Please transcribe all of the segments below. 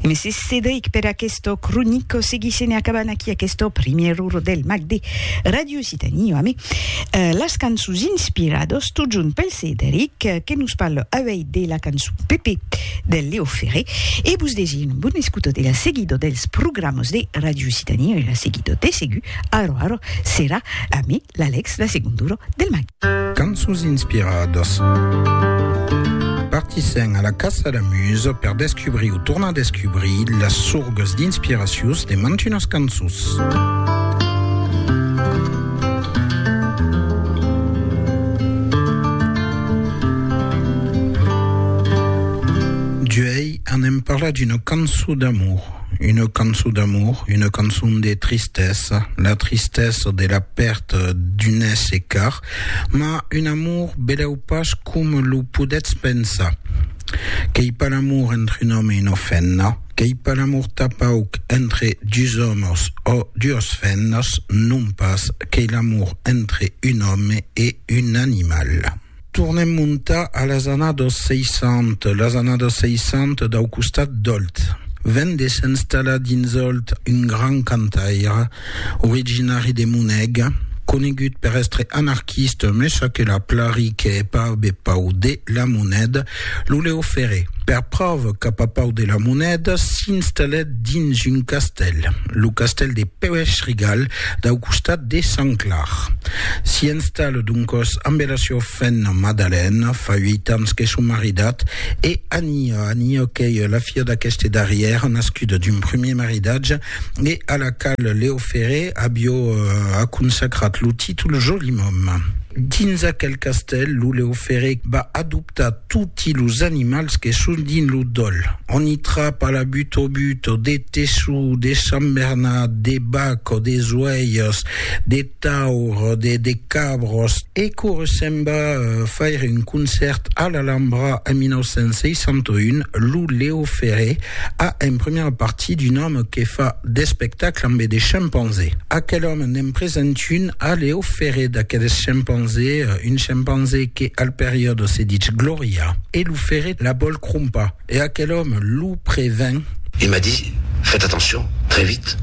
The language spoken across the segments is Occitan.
Mesi Cedric per aquesto cronico seguissent e acabant aquí aquesto primièr uro del mag de Radio Occitanie ami eh, las cançons inspirados tot junt pel Cedric eh, que nos parle avei de la cançon Pepe del Leo Ferré e vos desir un bon escuto de la seguido dels programas de Radio Occitanie e la seguido de segur aro aro serà ami L'Alex de segon duro del matin. Cançons inspiradas. Partissèm a la caça la musa per descubrir o tornar descubrir las sorgas d'inspiracions de mantunas cançons. Duei anem parlar d'una cançon d'amor. Una cançon d'amor, una cançon de tristesa, la tristesa de la pèrta d'un èsser car, mas un amor belèu pas coma lo podètz pensar. Qu'ei pas l'amor entre un òme e una femna, qu'ei pas l'amor tapauc entre dus òmes ò duas femnas, non pas, qu'ei l'amor entre un òme e un animal. Tornem montar a las annados 60, las annados 60 dau costat d'Òlt. Ven de s'enstallar dins Òlt un grand cantaire, originari de Moneg, conegut per èstre anarquista, me ça que la plari que hè pas be pau de la moneda, Lo Leo Ferré, per pròva cap a Pau de la Monèda, s'installèt dins un castèl, lo castèl de Pèuèch-Rigal, dau costat de Sant Clar. S'i installa doncòs ambe la siua femna Madalèna, fa uèit ans que son maridat, e Ania, Ania qu'ei la fia d'aqueste darrièr, nascuda d'un primièr maridatge, e a la qual Leo Ferré avió aconsacrat lo títol Joli Mòme. Dins aquel castèl, lo Leo Ferré va adoptar toti los animals que son dins lo dòl. On i trapa la butobuto, de teçu, de sambernat, de bac o de zoèirs, de. Taur de de Cabros. E quora se'n va faire un concèrt a l'Alhambra en 1961, lo Leo Ferré a en primièra partit d'un òme que fa d'espectacle ambe de chimpanzé. Aquel òme n'en present un a Leo Ferré d'aqueles chimpanzé, un chimpanzé que al periòde se ditz Glòria e lo Ferré la vòl crompar. E aquel òme lo prevèn. Il m'a dit, Faites attention, très vite,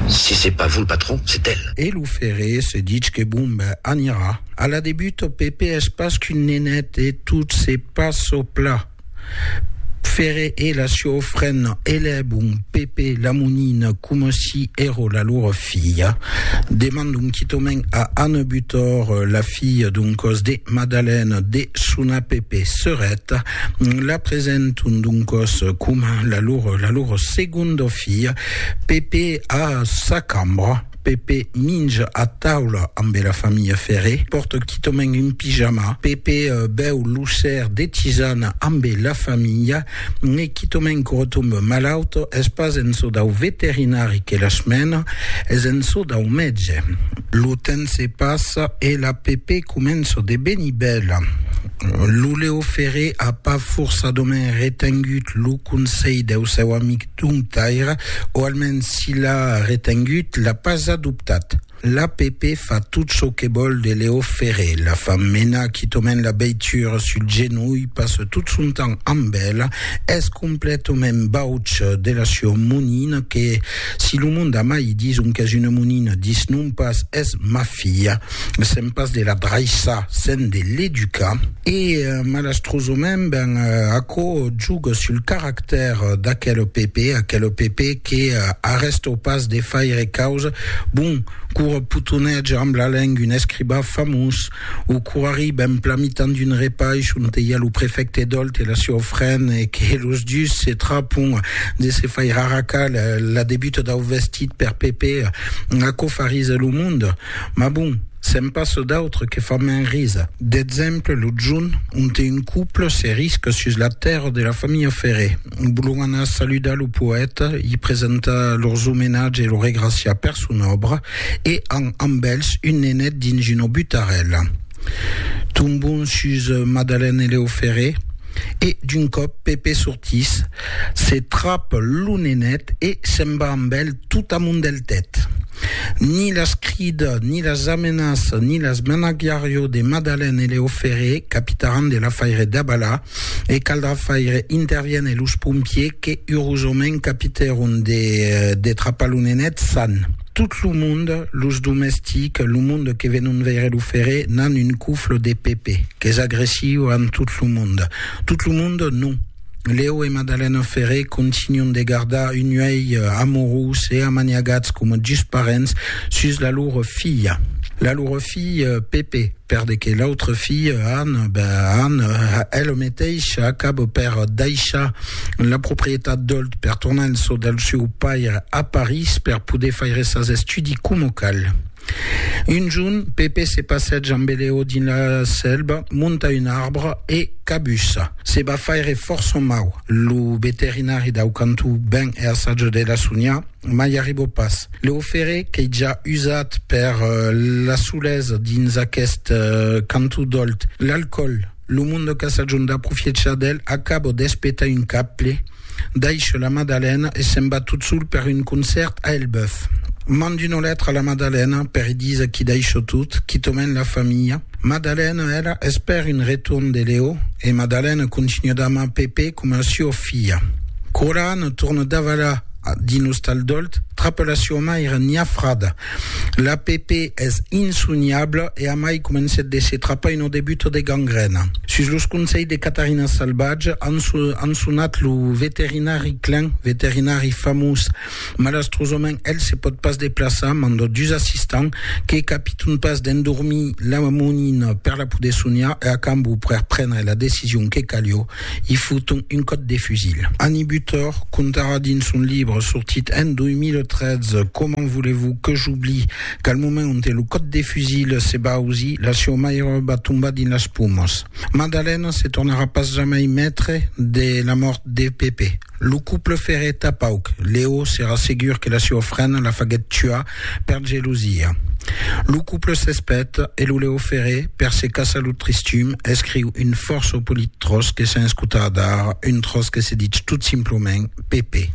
si c'est pas vous le patron, c'est elle. E lo ferré se ditz que bon ben anirà a la de Buto, Pepè es pas qu'un nenet e tot se pas çò pla. Ferré e la siò frena elèbon Pepè la monina coma si ero la lor filha. Demandon quitòmen a Anne Butor, la filha d'un còs de Madalène, de sonar Pepè serèt. La presenton doncòs coma la lor, la lor segonda filha. Pepe a sa cambra. Pepe minja a taula ambe la familha Ferré. Pòrta quitament un pijama. Pepe bèu lo ser de tisana ambe la familha. E quitament que retombe malaut. Es pas en çò dau veterinari que las mena, es en çò dau mètge. Lo temps se passa e la Pepe comença de venir bèla. Lo Leo Ferré a pas forçadament retengut lo conselh deu seu amic Dom Taira, o almens si l'a retengut, l'a pas adoptat. L'APP fa tot çò que vòl de Leo Ferré, la fa menar quitament la veitura sul genolh, passa tot son temps amb ela, es completament bauç de la sua monina que, si lo monde a mai dison qu'es una monina, disnon pas es ma filha. Sèm pas de la draissar, sèm de l'educar. E malastrosament, ben, aquò juga sul caractèr d'aquel PP, aquel PP que arrèsta pas de faire causa, bon, qu'ora potonètge amb la lenga un escribà famós, o qu'ora arriba en plan mitan d'un repaish onte i a lo prefècte Dolt e la siua ofrena e que los dus se trapon de se faire arracar la debuta dau vestit per PP, aquò farisa lo monde. Mas bon, se'n passa d'autres que fan mens risa. D'exemple, lo junh, onte un couple se risca sus la tèrra de la familha Ferré. Volon anar saludar lo poèta, i presentar lors omenatge e lo regraciar per son òbra, e an amb elhs un nenet dins una butarèla. Tombon sus Madalène e Lèo Ferré, e d'un còp Pepè sortís, se trap lo nenet e se'n va amb elh tot amont del tèt. Ni las crida, ni las amenaça, ni las menagiarió de Madalèn e Leo Ferré, capitaràn de l'afaire d'Abala, e caldrà faire interviéner los pompiers que urosament capitèron de trapar lo nenet san. Tot lo monde, los domestics, lo monde que venon veire lo Ferré, n'an un cofle de Pepe, qu'es agressiu amb tot lo monde. Tot lo monde, non. Leo e Madalena Ferré continuan de gardar un uèlh amorós e amaniagats coma dus parents sus la lor filha. La lor filha Pepe, per de que l'autra filha Anna, ben Anna, ela meteisha acaba per daishar la proprietat d'Olt per tornar en çò del seu paire a París per poder faire sas estudis coma cal. Un jorn, Pepe se passèja amb Eleo dins la sèlva, monta un arbre e cabussa. Se va faire fòrt son mau. Lo veterinari dau cantó ven e assaja de la sonhar, mai arriba pas. Leo Ferré, qu'ei ja usat per la solesa dins aqueste cantó dolt, l'alcòl. Lo monde qu'a sajon d'aprofiechar d'el acabo d'espetar un cable, daisho la Madalena e se'n va tot sol per un concèrt a Elbeuf. Mand una letra a la Madalena per i díser qu'i daisho tot, quitament la familha. Madalena, ela, espèr un retorn de Leo e Madalena continua d'amar Pepe coma a sua filha. Quora Anna torna davalar dins l'ostal d'Òlt, trapa la sua maira niafrada L'app es insoniabla e amai comencèt de se trapar una debuta de gangrèna. Sus los conselhs de Catarina Salvatge, an sonat lo veterinari Klein, veterinari famós. Malastrosament, el se pòt pas deplaçar, manda dus assistants, que capiton pas d'endormir la monina per la poder soniar e a cambó per prendre la decision que calió, I foton un còt de fusil. Annie Butor contarà dins son libre sortit en 2013 Comment voulez-vous que j'oublie qu'al moment onte lo còt de fusil se va ausir, la sieu maire va tombar dins las pomas. Madalena se tornarà pas jamai maitre de la mòrt de Pepe. Lo couple ferreta pauc. Leo serà segur que la sieu frena la faguèt tuar Per gelosia. Lo couple s'espet e lo Leo Ferré, per se caçar lo tristum, escriu un fòrça polit tròç que s'en escota adara, un tròç que se ditz tot simplament Pepe.